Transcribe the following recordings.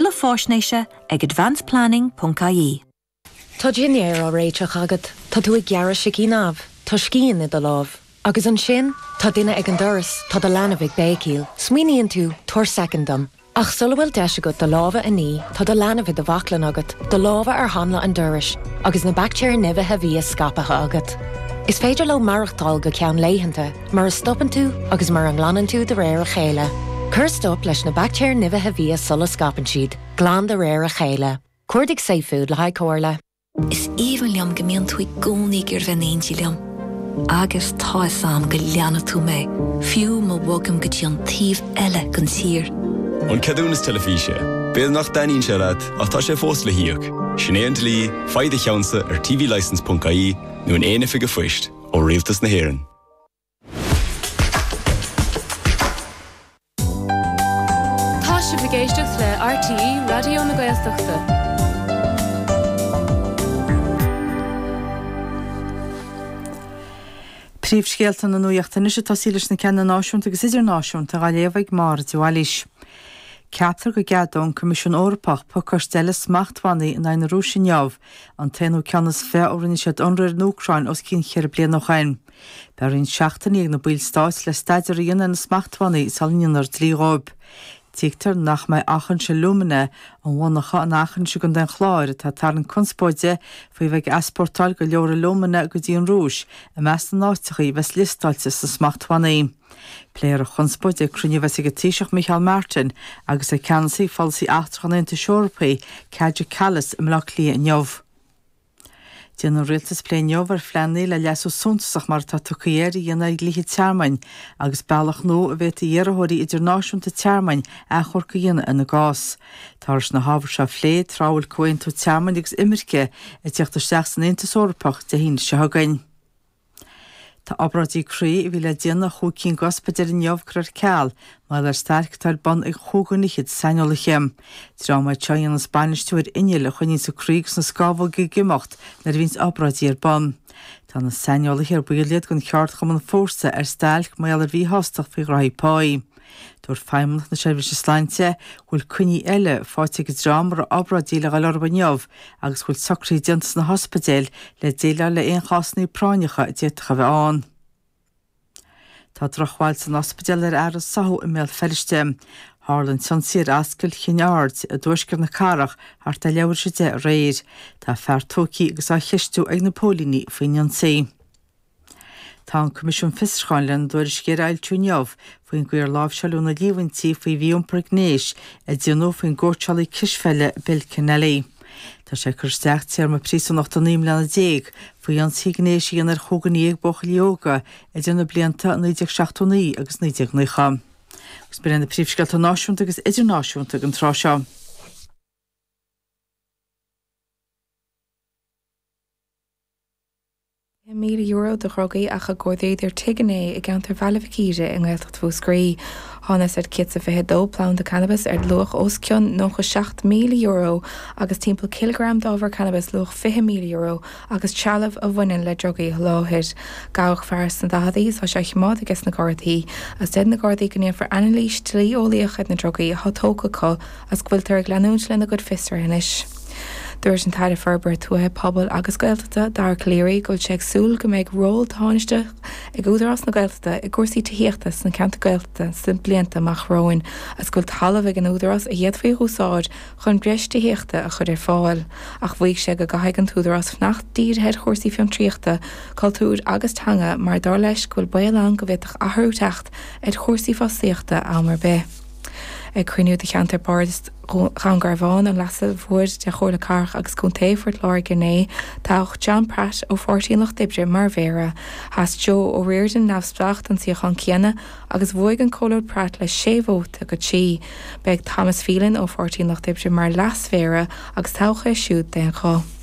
Tuilleadh faisnéise ag advanceplanning.ie. Tá dinnéar á réiteach agat, tá tú ag gearradh sicín amh, tá scian i do lámh. Agus ansin, tá duine ag an doras, tá do leanbh ag béicíl. Smaoiníonn tú, 'Tabhair soicind dom. Ach sula bhfuil deis agat do lámha a ní, tá do leanbh i do bhaclainn agat, do lámha ar hanla an dorais, agus na baictéir nimhithe bhia scaipthe agat. Is féidir leo maireachtáil go ceann laethanta. mura stopann tú agus mura nglanann tú de réir a chéile. Cuir stop leis na baictéir nimhithe bhia sula scaipeann siad, glan de réir a chéile. Cuardaigh safefood le haghaidh comhairle. Is aoibhinn liom go mbíonn tú i gcónaí ag iarraidh bheith in éindí liom. Agus tá fhios a'm go leanfaidh tú mé, fiú má bhogaim go dtí an taobh eile den tír. An ceadúnas teilifíse. B'fhéidir nach dtaitníonn sé leat, ach tá sé fós le híoc. Sin é an dlí, faigh do cheannsa ar tvlicence.ie nó in aon oifig an phoist. ó Rialtas na hÉireann. Tá sibh ag éisteacht le RTÉ Raidió na Gaeltachta. Príomhscéalta na Nuaíochta anois ag tosaí leis na ceanna náisiúnta agus idirnáisiúnta dhá léamh ag Máire de Bhailís. Ceaptar go gceadóidh an Coimisiún Eorpach pacáiste eile smachtbhannaí in aghaidh na Rúise inniu an t-aonú ceann is fiche ó rinne siad ionradh ar an Úcráin os cionn ceithre bliana ó shin. Beidh roinnt seachtainí ag na ballstáit le staidéar a dhéanamh ar na smachtbhannaí sula ndéanfar dlí dhóibh. Tuigtear nach mbeidh Aughinish Alumina, an mhonarcha in Eachinis i gContae an Chláir, atá ag tarraingt conspóide faoi bheith ag easpórtáil go leor alumina go dtí an Rúis, i measc na n-áiteachaí a bheas liostáilte sna smachtbhannaí. Pléifear an chonspóid ag cruinniú a bheas ag an Taoiseach Micheál Martin agus ag Ceannasaí Pholasaí Eachtrach an Aontais Eorpaigh, Kaja Kallas i mBleá Cliath inniu. Déanfaidh an Rialtas plé inniu ar phlean nua le leasú suntasach mar atá tugtha air a dhéanamh ar dhlíthe tearmainn agus bealach nua a bhféadfaidh iarrthóirí idirnáisiúnta tearmainn achomharc a dhéanamh ina gcás. Táthar leis na hábhair seo a phlé tráth a bhfuil Comhaontú Tearmainn agus Imirce ag teacht isteach san Aontas Eorpach Dé hAoine seo chugainn. Tá obráidí croí a bhí le déanamh i chúig cinn de ospidéil inniu curtha ar ceal mar gheall ar stailc atá ar bun ag chúig dhuine fhichead saineolaithe. Dream iad seo a dhéanas bainistiú ar innill a choinníonns an croí agus na scámhóga ag imeacht nuair a bhíonns obráidí ar bun. Tá na saineolaithe, ar baill iad den cheardchumann Fórsa, ar stailc mar gheall ar mhíshástacht faoi ghraithí páí. Dúirt Feidhmeannacht na Seirbhíse Sláinte go bhfuil coinní eile faighte ag an dream a raibh obráidí le dhul orthu inniu agus go bhfuil socruithe déanta sna hospidéil le déileáil le aon chásanna práinneacha a d'fhéadfadh a bheith ann. Tá drochbhail san ospidéal ar fhear a sáthadh i mBéal Feirste. Tharla an t-ionsaí ar Ascaill Chinn Aird i dtuaisceart na cathrach thart ar leathuair th'éis a deich aréir. Tá fear tógtha agus á cheistiú ag na póilíní faoin ionsaí. Tá an Coimisiún Fiosrúcháin lena dtuairisc a fhoilsiú inniu faoin gcaoi ar láimhseáileadh na líomhaintí faoi mhí-iompar gnéis a déanadh faoin gcóitseálaí cispheile Bill Kenneally. Tá sé ag cur isteach téarma príosúnachta naoi mbliana déag faoi ionsaí gnéis a dhéanamh ar chúigear déag buachaillí óga idir na blianta 1979 agus 1990. Agus ba iad na príomhscéalta náisiúnta agus idirnáisiúnta ag an tráth seo. €20,000 de dhrugaí ach a gcuardaíodar tigh inné i gceantar Bhaile Mhic Íre i nGaeltacht Mhúscraí. Thángthas ar 122 planda cannabais ar luach os cionn €97,000 agus timpeall cileagram d'ábhar cannabais luach €20,000 agus trealamh a bhaineann le drugaí a sholáthair. Gabhadh fear sna daicheadaí is tá sé á chimeád ages na Gardaí. Is deir na Gardaí go ndéanfar ainilís dlí-eolaíoch ar na drugaí atá tógtha acu, agus go bhfuiltear ag leanúint lena gcuid fiosruithe anois. Dúirt an tAire Forbartha Tuaithe, Pobail agus Gaeltachta, Dara Calleary, go bhfuil sé ag súil go mbeidh ról tánaisteach ag Údarás na Gaeltachta i gcúrsaí tithíochta sna ceantair Gaeltachta sna blianta amach romhainn agus go bhfuil talamh ag an Údarás a d'fhéadfaí a úsáid chun breis tithíochta a chur ar fáil, ach mhaígh sé go gcaithfidh an tÚdarás fanacht dírithe ar chúrsaí fiontraíochta, cultúir agus teanga mar, dar leis, go bhfuil baol ann go bhféadfadh athrú teacht ar chúrsaí fostaíochta am ar bith. Ag cruinniú de cheantar bardais Dhún Garbhán, an Leasa Mhóir de Chomhairle Cathrach agus Contae Phort Láirge inné, toghadh John Pratt ó Pháirtí an Lucht Oibre mar Mhéara. Sheas Joe O'Riordan, neamhspleách, don suíochán céanna agus bhuaigh an Comhairleoir Pratt le sé vóta go trí. Beidh Thomas Phelan ó Pháirtí an Lucht Oibre mar Leas-Mhéara agus toghadh é siúd d'aon ghuth.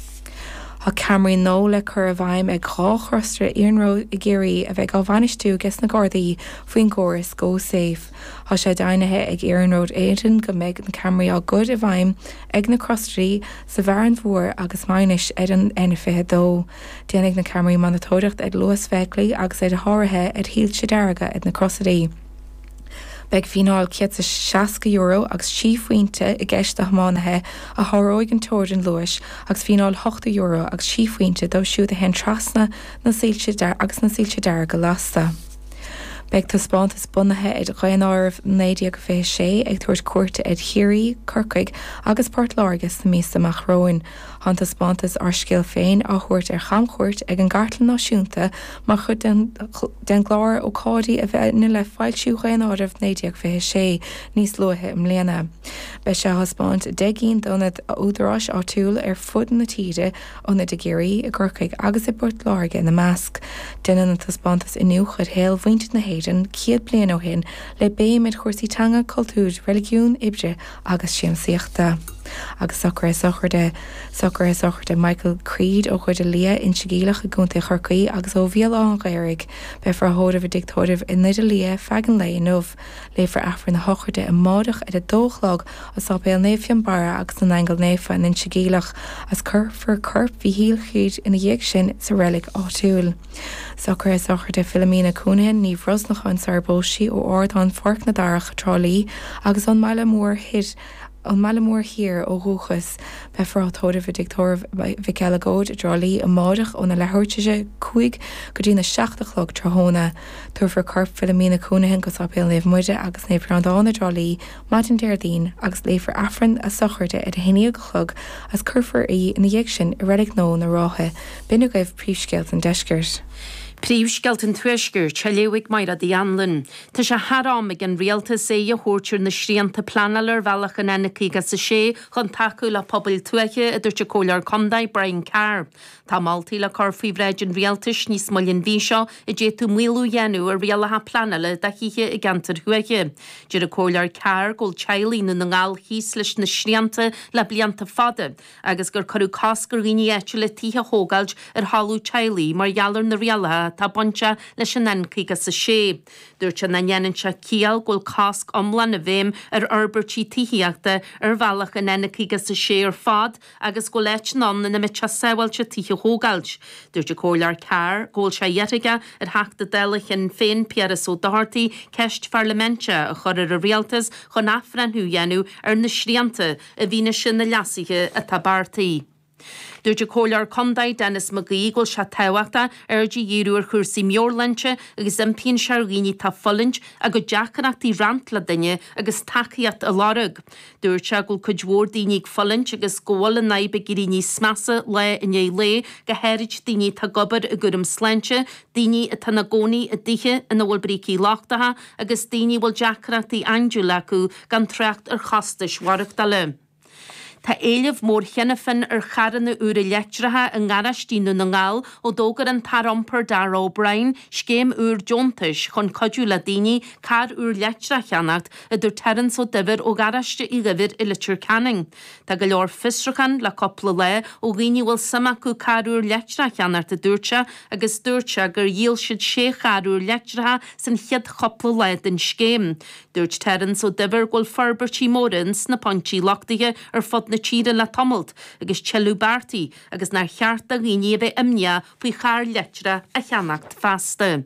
Tá ceamaraí nua le cur i bhfeidhm ag dhá chrosaire iarnróid i gCiarraí a bheidh á bhainistiú ages na Gardaí faoin gcóras GoSafe. Tá sé deimhnithe ag Iarnród Éireann go mbeidh na ceamaraí á gcur i bhfeidhm ag na crosairí sa bhFearann Fuar agus Maínis ar an N22. Déanfaidh na ceamaraí monatóireacht ar luas feithiclí agus ar sháruithe ar shoilse dearga ag na crosairí. Beidh fíneáil €160 agus trí phointe i gceist do thiománaithe a sháróidh an teorainn luais agus fíneáil €80 agus trí phointe dóibh siúd a théann trasna agus na soilse dearga lasta. Beidh taispeántas bunaithe ar Dhaonáireamh 1926 ag tabhairt cuairte ar Chiarraí, Corcaigh agus Port Láirge sna míosa amach romhainn. Tá an taispeántas Ár Scéal Féin á thabhairt ar chamchuairt ag an gCartlann Náisiúnta mar chuid den chlár ócáidí a bhainfidh le foilsiú Dhaonáireamh 1926 níos luaithe i mbliana. Beidh sé á thaispeáint i ndeich gcinn d'ionaid údaráis áitiúil ar fud na tíre, Ionaid i gCiarraí, i gCorcaigh agus i bPort Láirge ina measc. Déanann an taispeántas iniúchadh ar shaol mhuintir na hÉireann céad bliain ó shin le béim ar chúrsaí teanga, cultúir, reiligiún, oibre agus siamsaíochta. Agus socruithe sochraide. Socruithe sochraide Michael Creed ó Dhoire Liath, Inse Geimhleach i gContae Chorcaí agus ó Bhéal Átha an Ghaorthaidh, beifear á thórramh ina thigh cónaithe i nDoire Liath feadh an lae inniu. Léifear Aifreann na sochraide amáireach ar a dó a chlog i Sáipéal Naomh Fionbarra agus na nAingeal Naofa in Inse Geimhleach agus cuirfear corp Michael Creed ina dhiaidh sin sa reilig áitiúil. Socruithe sochraide Philomena Counihan, Ní Bhrosnacháin sarar phós sí ó Ardán Pháirc na Darach i dTrá Lí agus ón mBaile Mór Thoir, Ón mBaile Mór Thiar, ó dhúchas. Beifear á tórramh i dTigh Tórraimh Mhic Uileagóid i dTrá Lí amáireach óna leathuair tar éis a cúig go dtína seacht a chlog tráthnóna. Tabharfar corp Philomena Counihan go Sáipéal na Maighdine Muire agus Naomh Breandán i dTrá Lí maidin Déardaoin agus léifear Aifreann a sochraide ar a haon déag a chlog agus cuirfear í ina dhiaidh sin i Reilig Nua na Rátha, b'in agaibh príomhscéalta an deiscirt. Príomhscéalta an tuaiscirt á léamh ag Máire Uí Anluain. Tá sé thar am ag an Rialtas aghaidh a thabhairt ar na srianta pleanála ar bhealach an N56 chun tacú le pobail tuaithe, a dúirt an Comhairleoir contae, Brian Carr. Tá moltaí le cur faoi bhráid an Rialtais níos moille an mhí seo a d'fhéadfadh maolú a dhéanamh ar rialacha pleanála do thithe i gceantair thuaithe. Deir an Comhairleoir Carr go bhfuil teaghlaigh Dhún na nGall thíos leis na srianta le blianta fada agus gur cuireadh cosc ar dhaoine áitiúla tithe a thógáil ar thalamh teaghlaigh mar gheall ar na rialacha atá bainteach leis an N56. Dúirt sé nach ndéanann sé ciall go bhfuil cosc iomlán i bhfeidhm ar fhorbairtí tithíochta ar bhealach an N56 ar fad, agus go bhfuil áiteanna ann ina mbeadh sé sábháilte tithe a thógáil. Dúirt an Comhairleoir Carr go bhfuil sé i ndiaidh iarraidh ar Theachta Dála Shinn Féin Piaras Ó Dochartaigh ceist pharlaiminte a chur ar an Rialtas chun athbhreithniú a dhéanamh ar na srianta i bhfianaise na leasuithe atá beartaithe. Dúirt an comhairleoir contae Denis McGee go bhfuil sé tábhachtach aird a dhíriú ar chúrsaí meabhairshláinte agus impíonn sé ar dhaoine atá ag fulaingt a gcuid deacrachtaí a roinnt le duine agus tacaíocht a lorg. Dúirt sé go bhfuil cuid mhór daoine ag fulaingt agus go bhfuil an fhadhb ag éirí níos measa lá i ndiaidh lae, go háirid daoine atá ag obair i gcúram sláinte, daoine atá ina gcónaí i dtithe ina bhfuil brící lochtacha agus daoine a bhfuil deacrachtaí aindiúil acu, gan trácht ar chostais mhaireachtála. Tá éileamh mór cheana féin ar charranna úra leictreacha i ngaráistí i nDún na nGall ó d'fhógair an tAire Iompair Darragh O'Brien scéim úr deontais chun cuidiú le daoine carr úr leictreach a cheannacht, a dúirt Terence Ó Duibhir ó Gharáiste Uí Dhuibhir i Leitir Ceanainn. Tá go leor fiosrúchán le cúpla lá ó dhaoine a bhfuil suim acu carr úr leictreach a cheannacht a dúirt sé agus dúirt sé gur dhíol siad sé charr úr leictreacha san chéad chúpla lá den scéim. Dúirt Terence Ó Duibhir go bhfuil forbairtí móra ins na pointí luchtaithe ar fud na tíre le tamalt agus tuilleadh beartaithe agus nár cheart do dhaoine a bheith imníoch faoi charr leictreach a cheannacht feasta.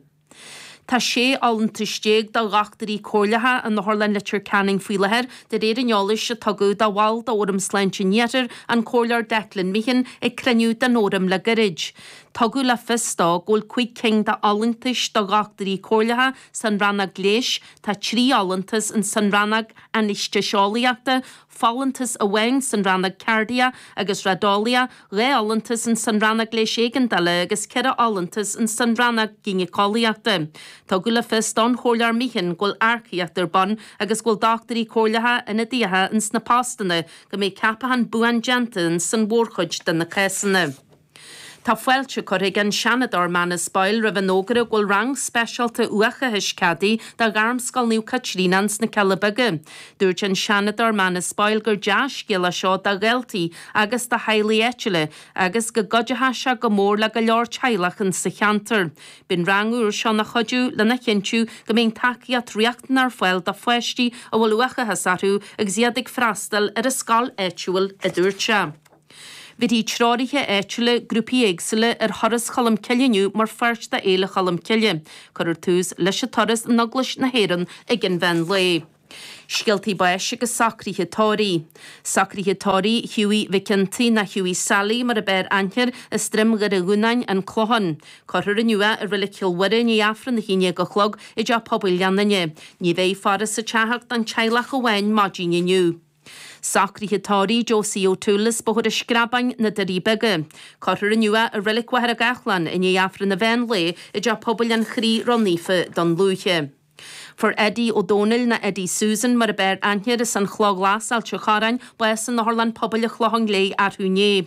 Tá sé fholúntas déag do Dhochtúirí Comhairleacha in Otharlann Leitir Ceanainn faoi láthair, de réir an eolais a tugadh do bhall d'Fhóram Sláinte an Iarthair, an Comhairleoir Declan Meehan, ag cruinniú den Fhóram le goirid. Tugadh le fios dó go bhfuil cúig cinn d'fholúntais do Dhochtúirí Comhairleacha san Rannóg Leighis, tá trí fholúntas in san Rannóg Ainaestéiseolaíochta, folúntas amháin san rannóg Cairdiach agus Raideolaíochta, dhá fholúntas in san rannóg Leighis Éigeandála agus ceithre fholúntas in san rannóg Gínéiceolaíochta. Tugadh le fios don Chomhairleoir Meehan go bhfuil earcaíocht ar bun agus go bhfuil dochtúirí comhairleacha, ionadaíocha in sna postanna, go mbeidh ceapachán buan déanta in san mhórchuid de na cásanna. Tá fáilte curtha ag an Seanadóir Manus Boyle roimh an fhógra go bhfuil rang speisialta uathachais ceadaithe do Ghairmscoil Naomh Caitríona ins na Cealla Beaga. Dúirt an Seanadóir Manus Boyle gur dea-scéal é seo do dhaltaí agus do theaghlaigh áitiúla agus go gcuideoidh sé go mór le go leor teaghlach ins sa cheantar. Beidh an rang úr seo ina chuidiú lena chinntiú go mbeidh an tacaíocht riachtanach ar fáil do pháistí a bhfuil uathachas orthu agus iad ag freastal ar an scoil áitiúil, a dúirt sé. Bhéarfaidh treoraithe áitiúla, grúpaí éagsúla ar Thuras Cholm Cille inniu mar pháirt de Fhéile Cholm Cille. Cuirfear tús leis an turas in Eaglais na hÉireann ag an mheán lae. Scéaltaí báis agus socruithe tórraimh. Socruithe tórraimh Hughie Mhic an tSaoi, nó Hughie Sally mar ab fhearr aithne air as Droim Dhoire Dhúnáin, An Clochán. Cuirfear inniu é i Reilig Chill Mhuire i ndiaidh Aifreann a haon déag a chlog i dTeach Pobail Ghleann Fhinne. Ní bheidh faire sa teach ach don teaghlach amháin maidin inniu. Socruithe tórraimh, Josie O'Toole, as Bóthar an Screabáin na Doirí Beaga. Cuirfear inniu é i Reilig Mhachaire Gathlán i ndiaidh Aifreann an mheán lae i dTeach Pobail an Chroí Ró-Naofa Dún Lúiche. Fuair Eddie Ó Dónaill, nó Eddie Susan mar ab fhearr aithne air, as an Chloch Ghlas, Ailt an Chorráin, bás in Otharlann Pobail an Chlocháin Léith arú inné.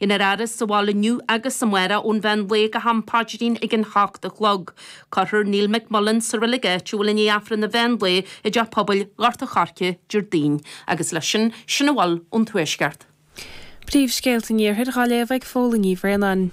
An fhaire sa bhaile inniu agus amárach ón mheán lae go ham paidrín ag a seacht a chlog. Cuirfear Neil McMullan sa reilig áitiúil i ndiaidh Aifreann an mheán lae i dTeach Pobail Ghort an Choirce, Déardaoin. Agus leis sin, sin a bhfuil ón Tuaisceart. Príomhscéalta an Iarthair dhá léamh ag Póilín Ní Bhraonáin.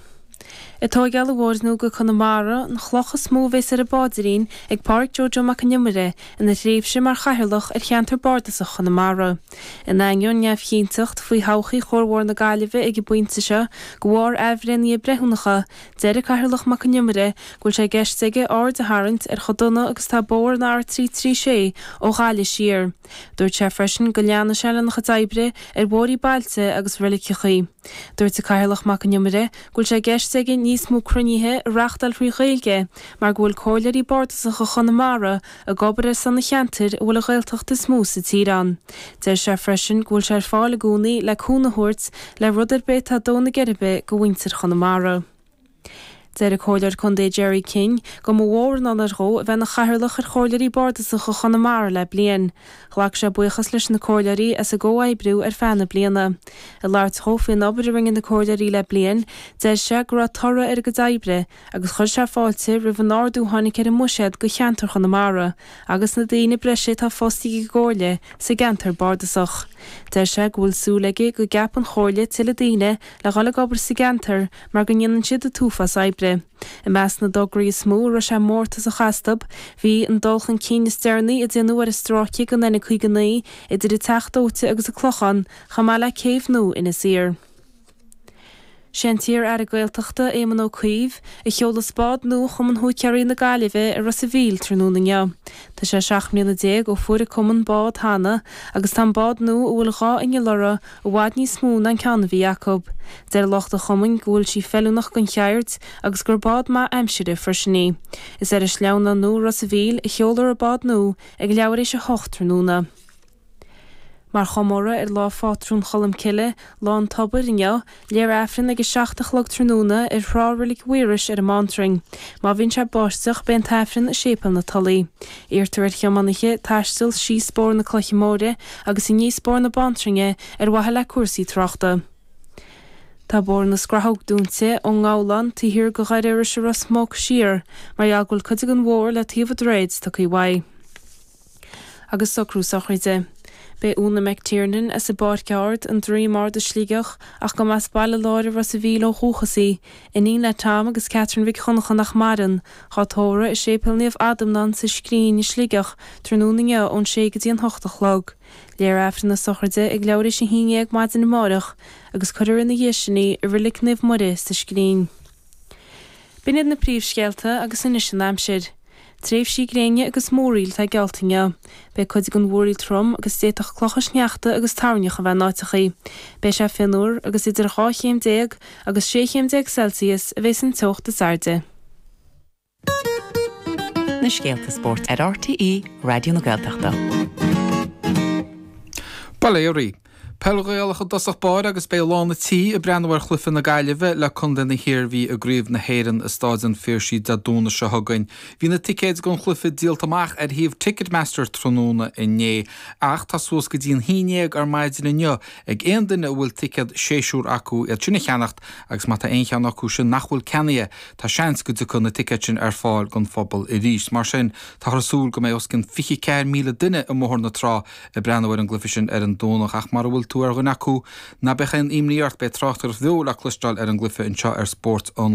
Tóigeáil an bhóthair nua go Conamara, an chloch is mó a bheas ar an bpaidrín ag Páraic Joe Joe Mac an Iomaire ina thréimhse mar chathaoirleach ar cheantar Bardasach Chonamara. In ainneoin neamhchinnteacht faoi thodhchaí chuarbhóthar na Gaillimhe ag an bpointe seo, de bharr athbhreithniú breithiúnacha, deir an Cathaoirleach Mac an Iomaire go bhfuil sé i gceist aige aird a tharraingt ar chomh dona agus atá bóthar an R336 ó Ghaillimh siar. Dúirt sé freisin go leanfaidh sé lena chuid oibre ar bhóithrí bailte agus reiligeachaí. Dúirt an Cathaoirleach Mac an Iomaire go bhfuil sé i gceist aige níos mó cruinnithe a reachtáil thrí Ghaeilge mar go bhfuil Comhairleoirí Bardasacha Chonamara ag obair ar son an cheantair a bhfuil an Ghaeltacht is mó sa tír ann. Deir sé freisin go bhfuil sé ar fáil i gcónaí le cúnamh a thabhairt le rud ar bith atá ag dó na geirbe do mhuintir Chonamara. Deir an Comhairleoir Contae Gerry King go mba mhór an onóir dhó a bheith ina Chathaoirleach ar Chomhairleoirí Bardasacha Chonamara le bliain. Ghlac sé buíochas leis na Comhairleoirí as a gcomhoibriú ar feadh na bliana. Ag labhairt dhó faoin obair a rinne na Comhairleoirí le bliain, deir sé go raibh toradh ar a gcuid oibre, agus chuir sé fáilte roimh an ardú a tháinig ar an mbuiséad do cheantar Chonamara agus na daoine breise atá fostaithe ag an gComhairle sa gceantar bardasach. Deir sé go bhfuil súil aige go gceapfaidh an Chomhairle tuilleadh daoine le dhul ag obair sa gceantar mar go ndéanann siad a t-uafás oibre. I measc na dtograí is mó a raibh sé mórtasach astu, bhí an dul chun cinn is deireanaí a déanadh ar an stráice den N59 idir an Teach Dóite agus an Clochán, chomh maith le céibh nua Inis Oírr. Sé an t-iar-Aire Gaeltachta, Éamon Ó Cuív, a sheolfas bád nua Chumann Húicéaraí na Gaillimhe i Ros a' Mhíl tráthnóna inniu. Tá sé seacht mbliana déag ó fuair an cumann bád cheana agus tá an bád nua a bhfuil dhá inneall orthu i bhfad níos mó ná an ceann a bhí acu. Deir lucht an chumainn go bhfuil sí feiliúnach don cheird agus gur bád maith aimsire freisin í. Is ar an sleamhnán i Ros a' Mhíl a sheolfar an bád nua ag leathuair éis a hocht tráthnóna. Mar chomóradh ar lá phátrún Cholm Cille, Lá an Tobair, inniu, léifear Aifreann ag a seacht a chlog tráthnóna ar thrá Reilig Mhaírois ar an mBantrainn. Má bhíonn sé ag báisteach, beidh an tAifreann i Séipéal na Tulaí. Iarrtar ar thiománaithe taisteal síos bóthar na Cloiche Móire agus aníos bóthar na Bantrainne ar mhaithe le cúrsaí tráchta. Tá bóthar na Scrathóg dúinte ón ngabhlán taobh thiar de Dhoire Iorrais i Ros Muc siar mar gheall go bhfuil cuid den bhóthar le taobh an droichid tugtha uaidh. agus socrú sochraide. Beidh Úna McTiernan as an bPáirc Ard, An Droim Ard i Sligeach, ach go mba as Baile Láir i Ros a' Mhíl ó dhúchas í, iníon le Tom agus Catherine Mhic Dhonnacha nach maireann, dhá tórradh i Séipéal Naomh Adamnán sa Scrín i Sligeach tráthnóna inniu ón sé go dtí an hocht a chlog. Léifear Aifreann na sochraide ag leathuair théis a haon déag maidin amáireach agus cuirear ina dhiaidh sin í i Reilig Naomh Muire sa Scrín. B'in iad na príomhscéalta agus anois an aimsir. Tréimhsí gréine agus múraíl atá geallta inniu. Beidh cuid den mhúraíl trom agus d'fhéadfadh clocha sneachta agus toirneach a bheith in áiteachaí. Beidh sé fionnuar agus idir dhá chéim déag agus sé chéim déag Celsius a bheidh an teocht is airde. na scéalta spóirt ar RTÉ Raidió na Gaeltachta. Bail ó Dhia oraibh. Peil Ghaelach i dtosach báire agus beidh lán na tí ag breathnú ar chluife na Gaillimhe le contae na hIarmhí i gCraobh na hÉireann i Stáid an Phiarsaigh Dé Domhnaigh seo chugainn. Bhí na ticéid don chluife díolta amach ar shuíomh Ticketmaster tráthnóna inné ach tá suas go dtí an haon dhéag ar maidin inniu ag aon duine a bhfuil ticéad séasúr acu iad sin a cheannacht agus má tá aon cheann acu sin nach bhfuil ceannaithe Tá seans go dtiocfaidh na ticéid sin ar fáil don phobal arís. Mar sin, táthar ag súil go mbeidh os cionn 24,000 duine i mBóthar na Trá ag breathnú ar an gcluife sin ar an Domhnach. Ach mara bhfuil tú ar dhuine acu, ná beadh aon imní ort, beidh tráchtaireacht bheo le cloisteáil ar an gcluife anseo ar spórt